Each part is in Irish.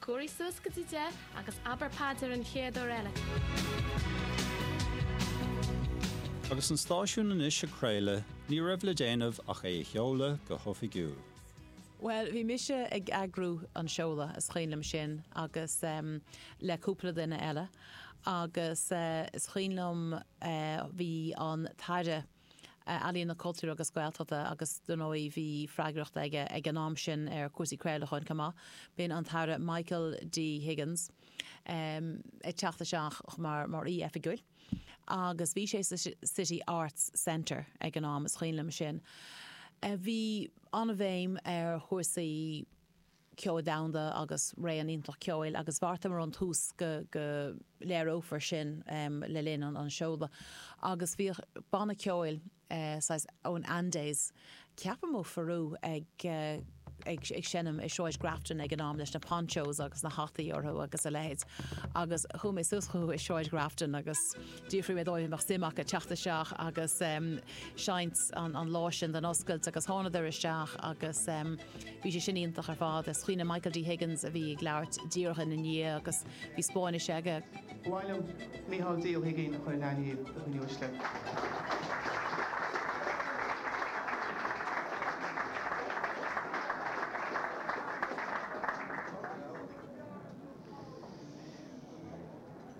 Cóirigh suas go dtí deich agus abair paidir an chéad uair eile. Agus an stáisiún anois ag craoladh, ní raibh le déanamh ach é a sheoladh go hoifigiúil. Bhuel, bhí mise ag eagrú an seoladh, is cuimhin liom sin, agus em, le cúpla duine eile. Agus eh, is cuimhin liom eh, bhí an tAire, Ealaíon, Cultúir agus Gaeltachta agus dar ndóigh bhí freagracht aige ag an am sin ar chúrsaí craolacháin chomh maith. B'in an tAire Michael D. Higgins ag teacht isteach mar aoi oifigiúil agus bhí sé sa City Arts Centre ag an am, is cuimhin liom sin. Bhí an-bhéim ar chúrsaí. ceoil domhanda agus réimse an-iontach ceoil agus bheartaíomar ón tús go go léireofar sin le linn an an seoladh agus bhíodh banna ceoil saghas ón Andes ceapaim ó Pheru ag ag ag seinm i Sráid Grafton ag an am leis na ponchos agus na hataí orthu agus a leithéid agus chuaigh mé suas chucu i Sráid Grafton agus. D'fhiafraigh mé díobh an mbeadh suim acu teacht isteach agus seinnt an lá sin don oscailt agus thánadar isteach agus bhí sé sin iontach ar fad. Is cuimhin liom Michael D Higgins a bhí ag labhairt díreach ina ndiaidh agus bhí Spáinnis aige. Ba mhaith liom Micheál D Ó hUiginn a chur in aithne do dhaoine uaisle.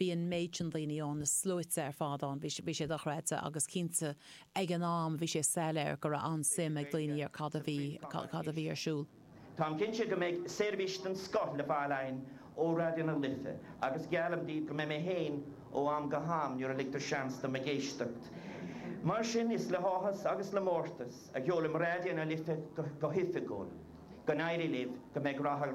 bhí an méid sin daoine ann, na sluaite ar fad ann, bhí sé dochreidte agus cinnte ag an am bhí sé soiléir go raibh an-suim ag daoine ar cad a bhí, cad a bhí ar siúl. Táim cinnte go mbeidh seirbhís den scoth le fáil againn ó Raidió na Life agus geallaim daoibh go mbeidh mé féin ó am go ham nuair a ligtear seans dom ag éisteacht. Mar sin, is le háthas agus le mórtas a sheolaim Raidió na Life go hoifigiúil. Go n-éirí libh, go mbeidh rath ar.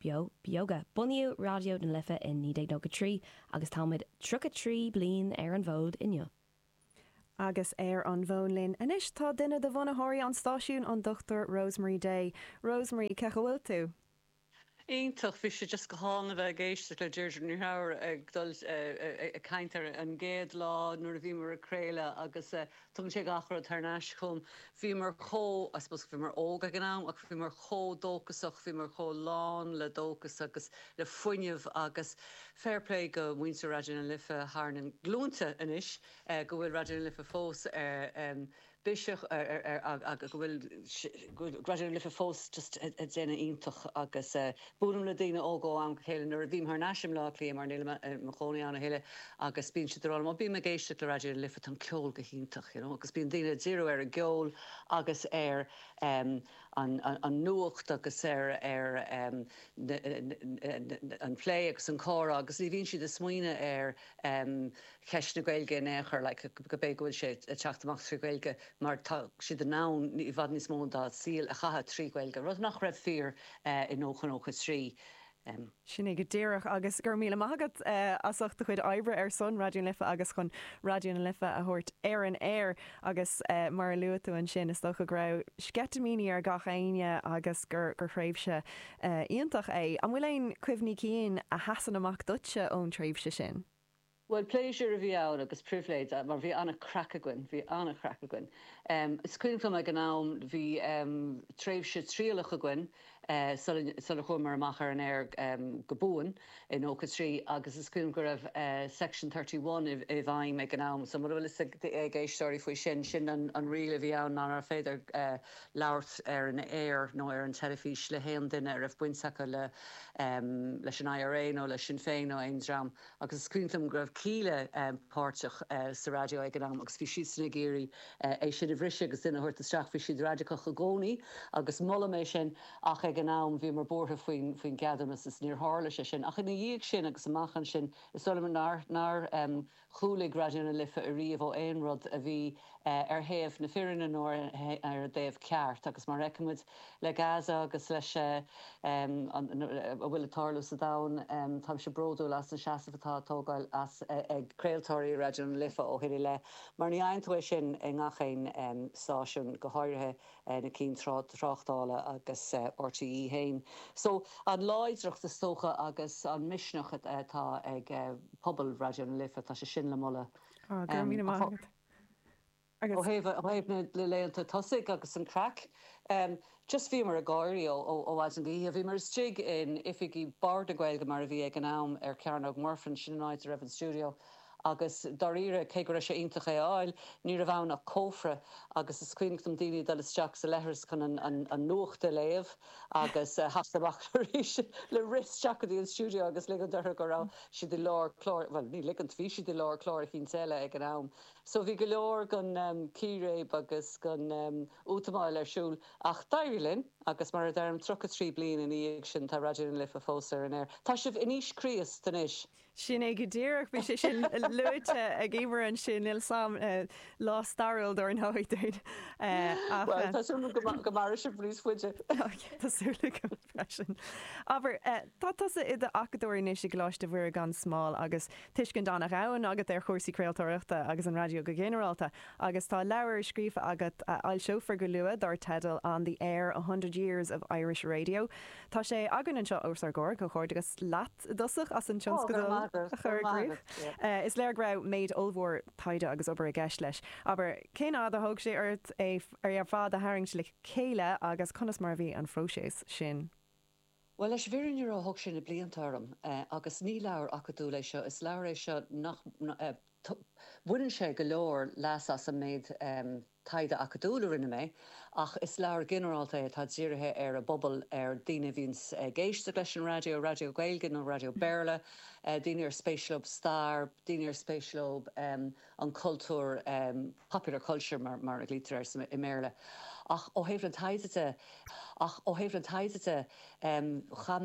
Beo Beoga. Bunaíodh Raidió na Life i 1993 agus táimid 33 bliain ar an bhfód inniu. Agus ar an bhfón linn anois tá duine de bhunaitheoirí an stáisiúin, an Dr Rosemary Day. Rosemary, cén chaoi a bhfuil tú? Iontach, bhí sé just go hálainn a bheith ag éisteacht le Deirdre Ní Threabhair ag dul, ag caint ar an gcéad lá nuair a bhíomar ag craoladh agus Tugann sé gach rud thar n-ais chugam. Bhíomar chomh, I suppose, bhíomar óg ag an am, ach bhíomar chomh dóchasach, bhíomar chomh lán le dóchas agus le fuinneamh agus fair play go muintir Raidió na Life, thar na glúinte anois go bhfuil Raidió na Life fós ar bís ar, ar, ag, ag, go bhfuil Raidió na Life fós just ag déanamh iontach agus Bualaim le daoine óga ó am go chéile nuair a bhím thar n-ais i mBleá Cliath mar nílim i mo chónaí ann a thuilleadh agus bíonn siad ag rá liom, 'Ó bím ag éisteacht le Raidió na Life, tá an ceol go hiontach! you know agus bíonn daoine ag díriú ar an gceol agus ar em an an nuacht agus ar ar em na na an plé agus an comhrá agus ní bhíonn siad ag smaoineamh ar em cheist na Gaeilge in aon chor like gurb é go bhfuil sé ag teacht amach trí Ghaeilge mar tá siad in ann i bhfad níos mó dá saol a chaitheamh trí Ghaeilge, rud nach raibh fíor I nócha trí. Sin é go díreach agus go raibh míle maith agat as ucht do chuid oibre ar son Raidió na Life agus chun Raidió na Life a thabhairt ar an aer. Agus mar a luaigh tú ansin, is dócha go raibh sceitimíní ar gach éinne agus gur thréimhse iontach é. An bhfuil aon chuimhní cinn a sheasann amach duitse ón tréimhse sin? Bhuel, pléisiúr a bhí ann agus pribhléid mar bhí an-chraic againn, bhí an-chraic againn. Is cuimhin liom ag an am bhí tréimhse trialach againn sular chuamar amach ar an aer go buan i nócha trí agus is cuimhin liom go raibh Section Thirty One i bhfeidhm ag an am. So mura bhfuil fhios ag éisteoirí faoi sin, sin an riail a bhí ann nárbh féidir labhairt ar an aer nó ar an teilifís le haon duine a raibh baint acu leis an IRA nó le Sinn Féin nó aon dream Agus is cuimhin liom go raibh Kíla páirteach sa raidió ag an am agus bhí siadsan ag iarraidh é sin a bhriseadh agus duine a thabhairt isteach. Bhí siad raidiceach i gcónaí agus molaim é sin ach ag an am bhíomar buartha faoin gceadúnas is níor tharla sé sin. Ach ina dhiaidh sin agus amach ansin is dóigh liom nár chúlaigh Raidió na Life ariamh ó aon rud a bhí ar thaobh na fírinne nó ar an dtaobh ceart agus mar a fheicimid le Gaza agus leis a bhfuil ag tarlú sa domhan táimse bródúil as an seasamh atá tógtha ag craoltóirí Raidió na Life ó shin i leith mar ní fhaigheann tú é sin i ngach aon stáisiún go háirithe na cinn tráchtála agus RTÉ féin so an láidreacht is dócha agus an misneach atá ag pobal Raidió na Life tá sé sin le moladh. Go raibh míle maith agat. Ó thaobh na laethanta tosaigh agus an craic, just bhíomar ag gáirí ó mhaidin go hoíche. Bhíomar istigh in oifigí Bord na Gaeilge, mar a bhí ag an am, ar Chearnóg Mhuirfean, sin an áit a raibh an stiúideo, agus dáiríre, cé go raibh sé iontach é a fháil, ní raibh ann ach cófra, agus is cuimhneach dom daoine ag dul isteach sa leithreas chun an nuacht a léamh. agus thacht amach arís le rith isteach go dtí an stiúideo agus ligeant orthu go raibh siad i lár cláir, bhuel, ní ligean, bhí siad i lár cláir eicínt eile ag an am. So bhí go leor den chíréib agus den útamáil ar siúl ach d'éirigh linn agus mar a deirim, 33 bliain ina dhiaidh sin tá Raidió na Life fós ar an aer. Tá sibh in aois Chríost anois. Sin é go díreach. Bhí sé sin luaite ag Emer ansin, níos luaithe sa lá stairiúil dár ndóigh dúinn. Bhuel, tá súil agam go mairfidh sibh níos faide. Tá súil agam freisin. Abair, tá tusa i d'acadóir anois i gColáiste Mhuire gan Smál agus tuiscint an-dhomhain agat ar chúrsaí craoltóireachta agus an raidió go ginearálta. Agus tá leabhar scríofa agat a fhoilseofar go luath dár teideal On the Air, A Hundred Years of Irish Radio. Tá sé againn anseo os ár gcomhair. Comhghairdeachas leat i dtosach as an tionscadal a chur i gcrích. Is léir go raibh méid ollmhór taighde agus obair i gceist leis. Abair, cén fhad a thóg sé ort é ar fad a tharraingt le chéile agus conas mar a bhí an próiseas sin? Bhuel, leis an bhfírinne a rá, thóg sé na blianta orm agus ní leabhar acadúil é seo. Is leabhar é seo nach mbaineann sé go leor leas as an méid. Taighde acadúil a rinne mé, ach is leabhar ginearálta é atá dírithe ar an bpobal, ar dhaoine a bhíonns ag éisteacht leis an raidió, raidió Gaeilge nó raidió Béarla, daoine ar spéis leo stair, daoine ar spéis leo an cultúr, popular culture mar a glaoitear air i mBéarla. Ach ó thaobh na taighde de, chaith mé an